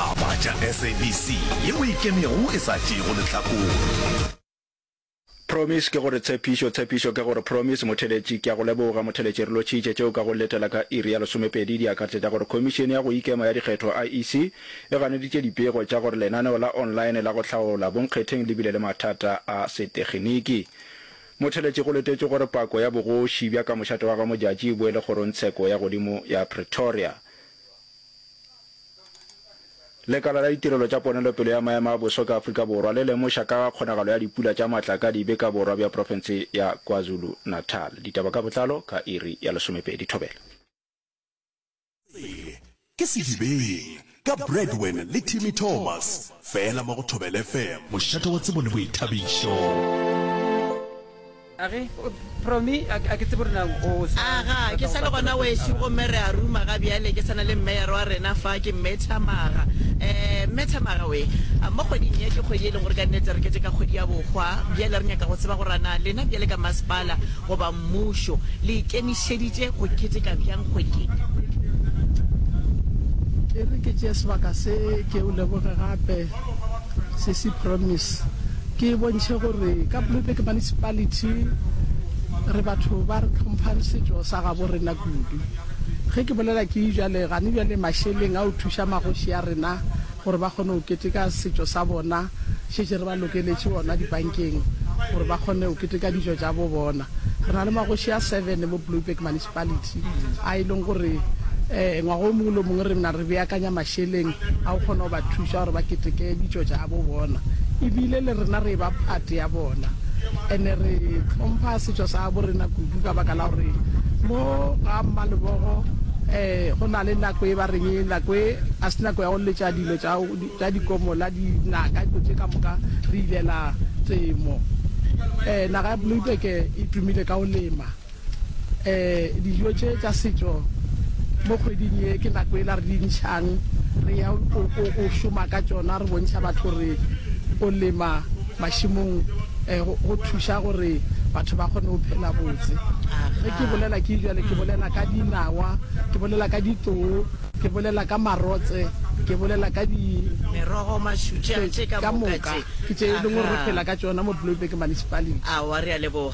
A Batša SABC yeo e Ikemego e sa Tšeego Lehlakore. Promise ke go re tshepišo, tshepišo ke go re promise motheletši. Ke a go leboga motheletši, re lotšhitše tšeo ka go letela ka iri ya lesomepedi di akaretša tša gore Khomišene ya go Ikema ya Dikgetho, IEC, e ganeditše dipego tša gore lenaneo la online la go hlaola bonkgetheng le bile le mathata a seteginiki. Motheletši, go letetšwe gore pako ya bogoši bja ka mošate wa ga Modjadji e boele kgorongtsheko ya godimo ya Pretoria. Lekala la Ditirelo tša Ponelopele ya Maemo a Boso ka Afrika Borwa le lemoša ka ga kgonagalo ya dipula tša matla ka dibe ka borwa bja profense ya KwaZulu-Natal. Ditaba ka botlalo ka iri ya lesomepedi. Thobela. Tsebe ke Sedibeng ka Bradwen le Timmy Thomas fela mo go Thobela FM. Mošate wa tsebo le boithabišo. A re, Promy, a ke tsebe gore na o sa. A ga ke sa le gona wešo, gomme re a ruma ga bjale. Ke sa na le mmeyer wa rena fa, ke Mme Thamaga. Um, Mme Thamaga we, mo kgweding ye, ke kgwedi e leng gore ka nnete re keteka kgwedi ya bohwa. Bjale re nyaka go tseba gore na lena bjale ka masepala goba mmušo le ikemišeditše go keteka bjang kgwedi ye. E re ke tšee sebaka se, ke o leboge gape. Sesi Promise, ke e bontšhe gore ka Bloemfontein Municipality re batho ba re tlhomphang setšo sa gabo rena kudu. Ge ke bolela ke jale gane jale mašeleng a o thuša magoši a rena gore ba kgone go keteka setšo sa bona, šetše re ba lokeletše ona dibankeng gore ba kgone go keteka dijo tša bo bona. Re na le magoši a seven mo Bloemfontein Municipality. municipality a e leng gore um ngwaga o mongwe le mongwe re mna re beakanya mašeleng a go kgona go ba thuša gore ba keteke ditšo tša bo bona ebile le rena re ba phate ya bona ene re tlhompha setšo sa bo rena kudu ka baka la gore mo ga mmalebogo um go na le nako e ba reng nako e a se nako ya go letša dilo tša dikomola dinaka dilo tše ka moka re ilela temo um naga ya bloibeke e tumile ka go lema Eh dijo tše tša setšo mo kgweding ye ke nako ela re di ntšhang re ya o, o, o šoma ka tšona re bontšha batho gore o lema mašimong eh, go, go thuša gore batho ba kgone go phela botse ge ke bolela ke jale ke bolela ka dinawa ke bolela ka ditoo ke bolela ka marotse ke bolela ka di merogo mašutše ka moka ke tše e leng gore re phela ka tšona mo bloemberg municipality awa re a leboga